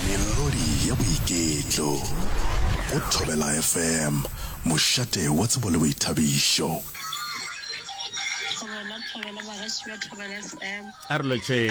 Melodi ya boiketlo go Thobela FM, mošate wa tsebo le boithabišo. A re lo tšee.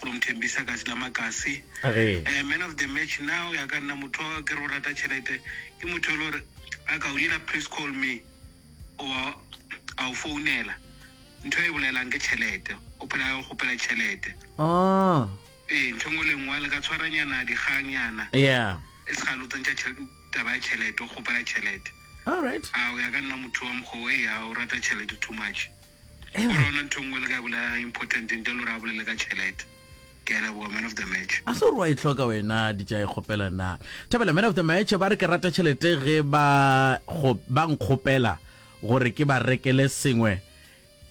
From Tembisa kasi la makasi. Eh, man of the match now ya ka nna motho wa ke re o rata tšhelete ke motho e le gore a ka o dira please call me oa a o founela ntho e bolelang ke tšhelete o phela ya go gopela tšhelete ah. ee ntho ngwe le ngwe le ka tshwaranyana dikgang yana yeah. e se ga lo tsentša taba ya tšhelete o gopela tšhelete a o ya ka nna motho wa mokgoe ya o rata tšhelete too much Ke gore ona ntho nngwe le ka bolela important ntle lore a bolele ka chelete. Ke a leboga man of the match. A se o re wa e hloka wena ditša e kgopela na Thabela man of the match ba re ke rata tšhelete ge ba go ba nkgopela gore ke ba rekele sengwe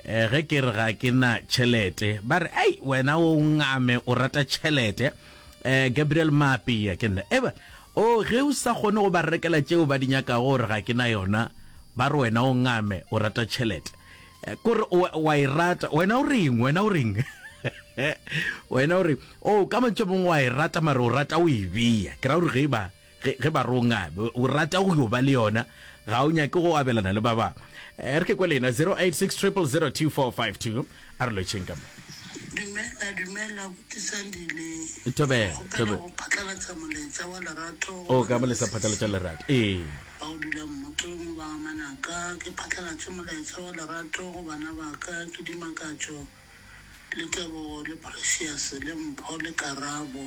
eh, ge ke re ga ke na tšhelete ba re ai wena o ngame o rata tšhelete eh, Gabriel Mapi ya ke nna eba Oo, ge o sa kgone go ba rekela tšeo ba di nyakago, o re, Ga ke na yona. Ba re, Wena o ngame, o rata tšhelete. Ko re, O, o a e rata. Wena o reng? Wena o reng? Wena o reng? Oo, ka mantšu a mangwe, o a e rata, mara o rata go e bea. Ke ra gore ge e ba, ge, ge ba re o ngame, o rata go yo ba le yona, ga o nyake go abelana le ba bangwe. Re ke kwa le yena, 086 000 2452. A re lwetšheng ka mo. Dumela, dumela, Abuti Sandile. Thobela, Ke kgopela thobe. go phatlalatsa molaetsa wa lerato go O ka bana ba molaetsa phatlalatša leswiswi. lerato. Ee. Ba o dula mmotong ba amanaka, ke phatlalatše molaetsa wa lerato go bana ba ka, ke di Makatšo, le Tebogo, le Precious, le Mpho, le Karabo.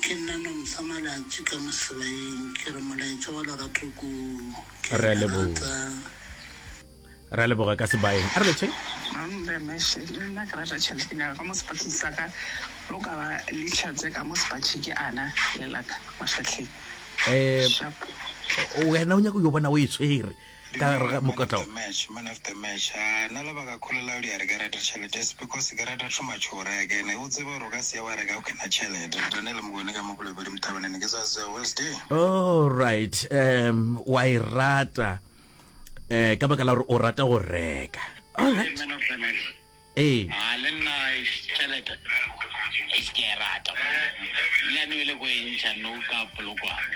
Ke nna Nomsa Malatši ka mo sebaeng, ke re molaetsa wa lerato ke o. Ke a Re a le leboga. rata. re a leboga ka sebaeng a re letsheng Mmemeše, le nna ke rata tšheleteng ya ka mo sepatšheng sa ka, lo ka ba lihla tse ka mo sepatšheng ke ana le la ka mafahleng. Eh, Shapo. o- wena o nyaka o yo bona o e tshwere ka gare ga mokotla o. Match, man of the match. Ah, na lebaka kholo la hore ya re ke rata tšhelete is because ke rata too much go reka ene o tseba gore o ka seya wa reka o kena tšhelete re tane le mokone ka mo kule godimo thabanane ke sa seya west day all right um wa e rata eh ka baka la gore o rata go reka alright ee a le nna tšhelete e se ke ya rata le yane e le go e ntšha no ka polokwane